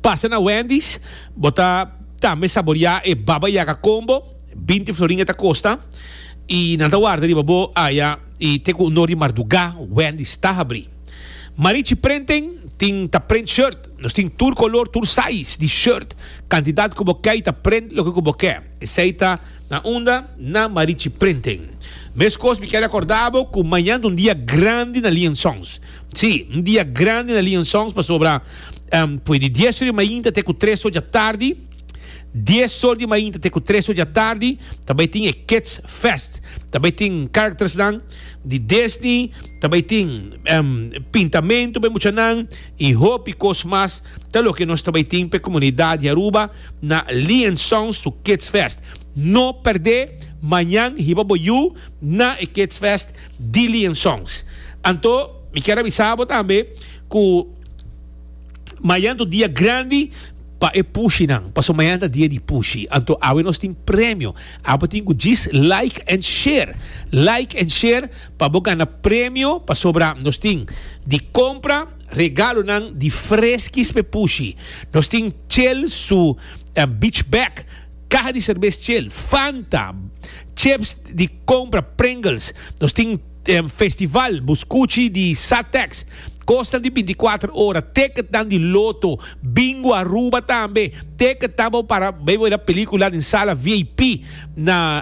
Pasa na Wendy's, bo ta tambe saborea e Baba Yaga Combo, binti florin e ta kosta, i nan ta warda riba bo aya i te ku un dor di mardugá Wendy's ta habrí. Marichi Prenting tin ta prent shirt, nos tin tur kolor, tur size di shirt, kantidat ku bo ke i ta prent loke ku bo ke. Esei ta na unda? Na Marichi Prenting. Meskos mi kere akorda bo ku mañan ta un dia grandi na Liansons. Sí, un dia grandi na Lion Songs pasobra pue di dies or di mainta te ku tres or di atardi, dies or di mainta te ku tres or di atardi, ta bai tin e Kids Fest. Ta bai tin charactersnan di Disney, ta bai tin pintamentu pa e muchanan i hopi kos mas. Ta loke nos ta bai tin pa e komunidat di Aruba na Lion Songs su Kids Fest. No perdé, mañan hiba bo yu na e Kids Fest. Dillion Songs. Anto mi kier a bisa bo tambe cu mayan ta un dia grandi pa e pushinan, pasobra mayan ta dia di pushi. Anto awe nos tin premio. Abo tin cu djis like and share. Like and share pa bo gana premio pasobra nos tin di compra regalonan di freskis pa e pushi. Nos tin Chel su beach bag. Caha di cervez Shell, Fanta, chips di compra Pringles. Nos tin festival bu scuchi di Satex, cosnan di binti cuater ora, ticketnan di Lotto, Bingo Aruba tambe, ticketnan pa bo para bay wira pelicula den sala vip na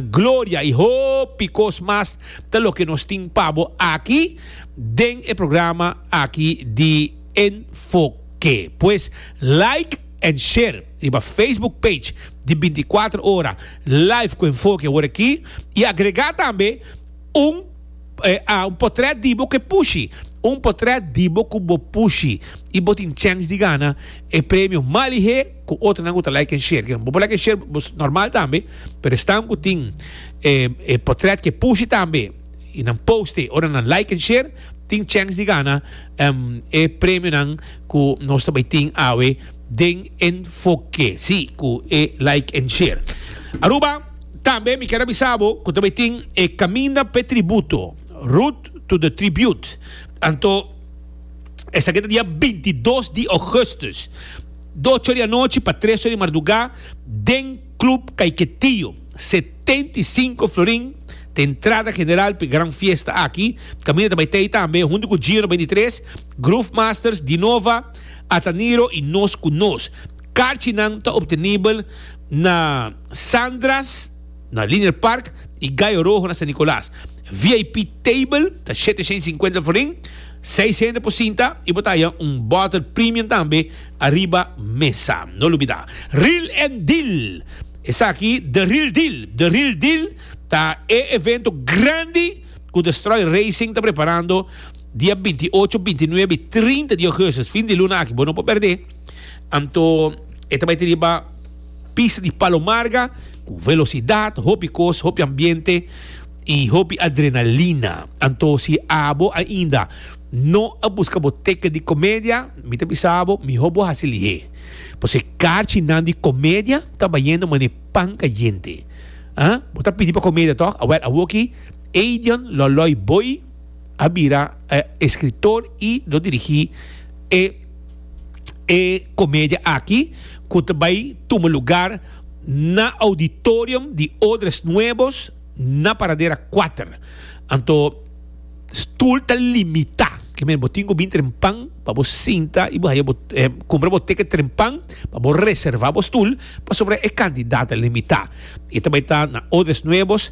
Gloria y hopi cos mas ta loke nos tin pa bo aki den e programa aki di Enfoke. Pues like and share. Riba Facebook page di binti kuater ora live ku enfoke a wor aki i agregá tambe un un potret di bo ku e pushi, un potret di bo ku bo pushi i bo tin chèns di gana e premio mas lihé ku otronan ku ta like en share. Bo por like en share bo normal tambe pero esnan ku tin e potret ke pushi tambe i nan poste ora nan like en share tin chèns di gana e premionan ku nos ta bai tin awe. den enfoke. Si cu e like en share. Aruba, Tambe mi ker a bisa bo cu ta bay tin e Caminda p'e Tributo, Route to the Tribute, anto esaki ta dia bintidos di Augustus, doce ora di anochi pa tres ora di marduga, den Club Caiquetío, setenta i sinku florin ta entrada general p'e gran fiesta aki. Caminda ta bay t'ey tambe hunto cu Gino beintitres, Groove Masters, Dinova, Ataniro y Nos cu Nos. Carchinan ta obtenibel na Sandra's na Linear Park y Gallo Rojo na San Nicolas. VIP table ta shete shen cincuenta florin, seis hende por sinta y bo ta haya un bottle premium tambe ariba mesa. No lubida. Reel and Deal, Esaki The Reel Deal. The Reel Deal ta e evento grandi cu The Stroy Racing ta preparando. Dia binti i ocho, binti i nuebe i trinta di ougustus, fin di luna aki, bo no por perdé, anto e ta bai ta riba pista di Palomarga ku velosidat, hopi kos, hopi ambiente i hopi adrenalina. Anto si abo ainda no a buska bo teket di Komedia, mi ta bisa bo mihó bo hasi lihé, pasobra e karchinan di Komedia ta bayendo manera e pan kayente. Bo ta pidi pa Komedia tòg? Awèl, awoki Eidion Lòlòi Boi. a bira e escritor y lo dirigi e e comedia aki cu ta bay tuma lugar na auditorium di Odres Nuevos na Paradera Cuater. Anto stoel ta limita, ke men bo tin cu bin trempan pa bo sinta y bo haya bo cumpra bo ticket trempan pa bo reserva bo stoel pasobra e cantidad ta limita. Y ta bay ta na Odres Nuevos.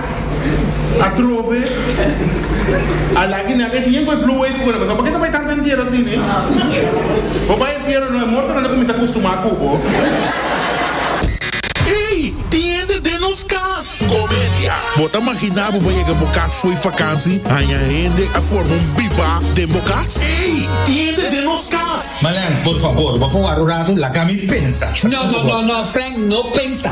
Atrobe a lagi nan e tiempo e blue wave ku nan pasá por ke ta bai tantu entiero así ne? Bo bai entiero no e mortonan ta kuminsá kustumá ku bo. Ey! Tiende den nos kas! Comedia. Bo ta maginá bo bai yega bo kas fo'i fakansi, haña hende a forma un bibá den bo kas? Ey! Tiende den nos kas! Malan, por fabor, bo a kowar'o ratu, laga mi pensa. No, no, no, no, Frank, no pensa.